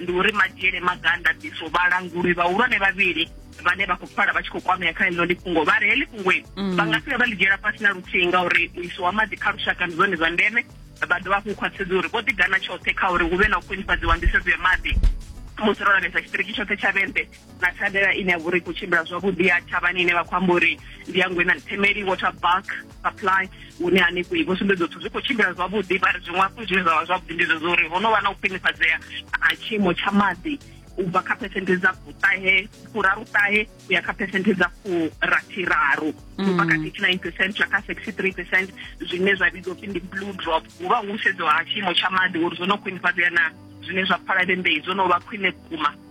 ndi uri madzhiele maga a ndaṱiso vhalanguli vhahulwane vhavhili vhane vha khou pfala vha tshi khou kwamea kha ḽino ḽifhungo vha ri heḽi fhungoi mm. vha nga si vha ḽi dzhiela fhasi na luthihi ngauri u isiwa maḓi kha lushaka ndi zwone zwa ndeme vha dovha hafhu u khwaṱhisedza uri vho ḓigana tshoṱhe kha uri hu vhe na u khwinifhadziwa nḓisedzo ya maḓi musi ro lavhelesa tshiṱiriki tshoṱhe tsha vhende na thandela ine ya vha uri khou tshimbila zwavhuḓi ya thavhani ine vha khou amba uri ndi ya ngwena themeli water bulk supply hune hanefho i vho sumbedza zwithu zwi khou tshimbila zwavhuḓi vha ri zwiṅwe hafhu zwine zwa vha zwavhuḓi ndi zwezwo uri ho no vha na u khwinifhadzea ha tshiimo tsha maḓi u bva kha phesenthe dza fuṱahe furaruṱahe u ya kha phesenthe dza furathiraru u bva kha mm. thirty nine percent ya kha sixty three percent zwine zwa vhidzwa upfi ndi blue drop hu vha hu sedzo ha tshiimo tsha maḓi uri zwo no khwinifhadzea na zwine zwa pfala vhembei zwo no vha khwine vhukuma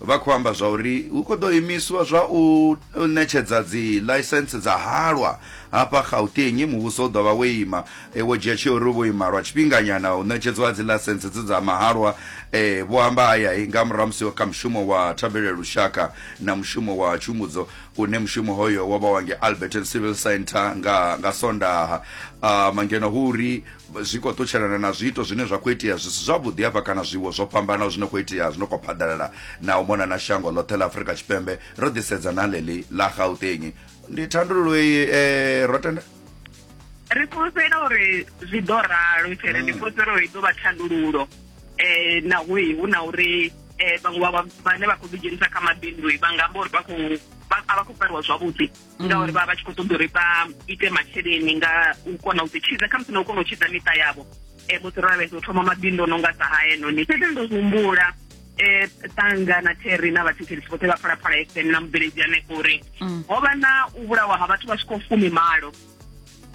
Vha khou amba zwa uri hu khou ḓo imiswa zwa u ṋetshedza dziḽaisentse dza halwa hafha Gauteng. Muvhuso u ḓo vha wo ima wo dzhia tsheo uri u vho ima lwa tshifhinganyana u ṋetshedzwa ha dziḽaisentse dzi dza mahalwa, vho amba aya nga murahu ha musi kha mushumo wa thabelo ya lushaka na mushumo wa tshumbudzo une mushumo hoyo wo vha wa ngei Alberton Civil Centre nga Sondaha. Ngeno hu uri zwi khou ṱutshelana na zwiito zwine zwa khou itea zwi si zwavhuḓi hafha kana zwiwo zwo fhambanaho zwine khou itea zwino khou phaḓalala na u mona na shango ḽoṱhe ḽa afurika tshipembe ro ḓisedza na ḽeḽi ḽa gauteng ndi thandululo iyi um ro tenda ri fhulufhela uri zwi ḓo ralo tshele ndi mm. fhulufhela uri i ḓo vha thandululo um na hu hu na uri um vhaṅwe vhane vha khou ḓidzhenisa kha mabindu vha nga amba uri vha khou a vha khou fariwa zwavhuḓi mm. ngauri vha vha tshi khou ṱoḓa uri vha ite masheleni nga u kona u ḓi tshidza khamusi na u kona u tshidza miṱa yavho um musi ro lavhelesa u thoma mabindu o no nga sa haenoni fhedzi ndo humbula eh tanga na Terry na vhathetshelisi vhoṱhe vha phalaphala FM na mubveledzi hanefho uri mm. ho vha na u vhulawa ha vhathu vha swikaho fumi malo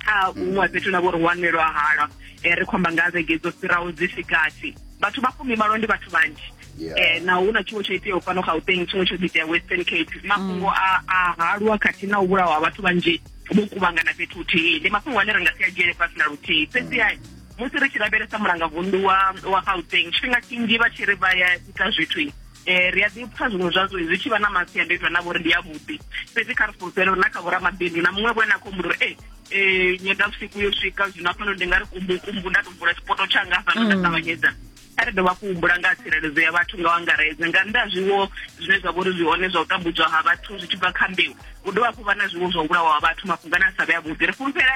kha huṅwe fhethu na vho ri wanelwa halwa um ri khomba nga vhege dzo fhiraho dzi sikati vhathu vha fumimalo ndi vhathu vhanzhi um na hu na tshiwo tsho iteaho fhano gauteng tshiwo tsho ḓitea western cape mafhungo mm. a halwa khathihi na u vhulawa ha vhathu vhanzhi vho kuvhangana fhethu huthihi ndi mafhungo ane ri nga si a dzhiele fhasi na luthihi fhedzi ai musi ri tshi lavhelesa mulanga vundu wa wa gauteng tshifhinga tshinzhi vha tshi ri vha ya ita zwithu um ri a ḓi pfa zwiṅwe zwazwo zwi tshi vha na masiandoitwa na vhori ndi ya vhuḓi fhedzi kha ri fulufhele uri na kha vhoramabindu na muṅwe vho ene a khou humbula uri e um nyendavhusiku yo swika zwino afhano ndi nga ri kumbukumbu nda to vula tshipoto tshanga afhano nda mm. ṱavhanyedza kha ri dovha kuhumbula nga tsireledzo ya vhathu nga wangaredze nga nnḓa zwiwo zwine zwa vhori zwi hone zwa u tambudzwa ha vhathu zwi tshi bva kha mbeu u dovha hafhu vha na zwiwo zwa u vhulawa ha vhathu mafhungani a sa vhe a vhuḓi ri fulufhela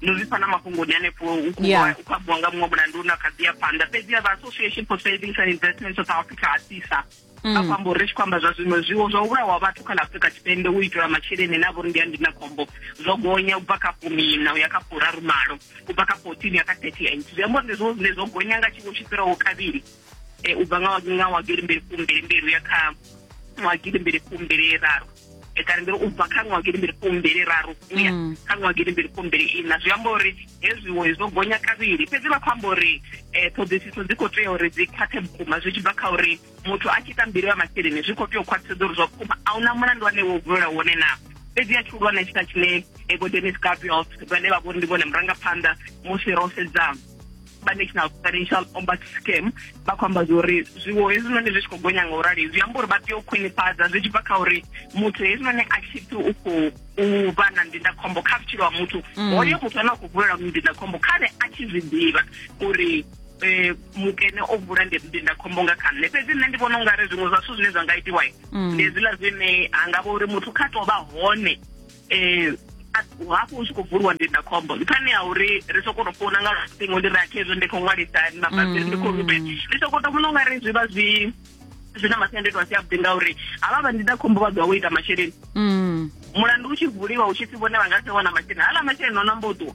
no zwi fana mafhungoni hanefho u khou ambiwa nga muṅwe mulandu na kha ḓi ya phanḓa fhedzi ya vha association for savings and investment south africa a sisa mm. a fhambo ri tshi khou amba zwa zwiṅwe zwiwo zwa u vhulawa vhathu kha ḽa afrika tshipembe u itela masheleni na vhori ndi a ndina khombo zwo gonya u bva kha fumina u ya kha furaru malo u bva kha fourteen ya kha thirty eight zwi amba uri ndi zwo zwine zwo gonya nga tshiwo tshi fhiraho kavhili eh, u bva nga nga wa gilimbili fumbili mbili uya kha wa gilimbili fumbili raru eh, kana ndiri u bva kha ṅwa gilimbili fumbili raru uya mm. kha ṅwa gilimbili fumbili ina zwi amba uri hezwiwo zwo gonya kavhili fhedzi vha khou amba uri um ṱhoḓisiso dzi khou tea uri dzi khwaṱhe vhukuma zwi tshi bva kha uri muthu a tshi ita mbili ya masheleni zwi khou tea u khwaṱhisedza uri zwa vhukuma a huna mulandu wane wo vulela wone naa fhedzi a tshihulwane tshita tshine ego denis gabriels vhane vha vhori ndi vhone murangaphanḓa musi ro sedzana vha national financial ombud scam vha khou amba zwori zwiwo hezwinoni zwi tshi khou gonya nga u rali zwi amba uri vha tea u khwinifhadza zwi tshi bva kha uri muthu hezwinoni a tshi pfi u khou u vha na ndindakhombo kha vhutshilo ha muthu mm. hoyo muthu ane a khou vulela ndindakhombo khane a tshi zwi ḓivha uri eh, mukene o vula ndindakhombo nga kha nṋe fhedzi nṋe ndi vhona u nga ri zwiṅwe zwa zwithu zwine zwa nga itiwa mm. ndi hezwiḽa zwine ha nga vha uri muthu kha tou vha hone eh hafhu hu tshi khou bvuliwa ndindakhombo nṱhani ha uri ri soko to founa nga luṱingo ndi ri akhezwo ndi khou ṅwalisa mabambiri ndi khou rubela mm. ndi soko to vhona u nga ri zwi vha zwi zwi na masiandoitwa a si avhuḓi ngauri havha vha ndindakhombo vha ḓo wa u ita masheleni mm. mulandu u tshi vuliwa u tshi pfi vhone vha nga si wana masheleni hala masheleni o nambo ṱuwa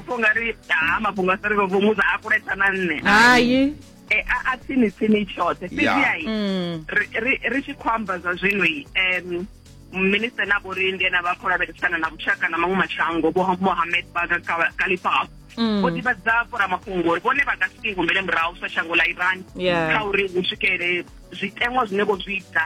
pfha unga ri ha mafhungo a sa ri vho mudza a kulesa na nṋe hai e a a tsini tsini tshoṱhe fhedziha i Mm. ri ri- ri tshi khou amba zwa zwino i em minister na vho ri ndi ena vha khou lavhelesana na vhushaka na maṅwe mashango vho mohamed baga Ka- kalifaf Mm. vho ḓivhadza vhoramafhungo uri vhone vha nga si ḓingumbele murahu sa shango ḽa iran Yeah. kha uri hu swikele zwiteṅwa zwine vho zwi ita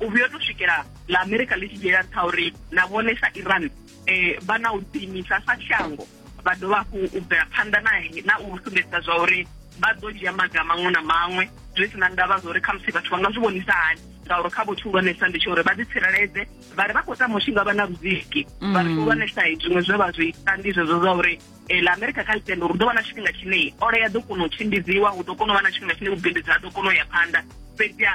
u vhuya to swikela la amerika ḽi tshi dzhiela nṱha uri na vhone sa iran um vha na u ḓiimisa sa shango vha dovha hafhu u bvela phanḓa nae na u sumbedzisa zwa uri vha ḓo dzhia maga maṅwe na maṅwe zwi si na ndavha zwa uri khamusi vhathu vha nga zwi vhonisa hani ngauri kha vho tshihulwanesa ndi tsho uri vha ḓitsireledze vha ri vha khou tama u tshi nga vha na vhuziki mm. vha ri tshihulwanesa zwiṅwe zwe vha zwi ita ndi zwezwo zwa uri eh, la amerika kha ḽitendo uri ḓo vha na tshifhinga tshine ola ya ḓo kona u tshimbidziwa hu ḓo kona u vha na tshifhinga tshine vhubindudzi ha ḓo kona u ya phanḓa fhedziha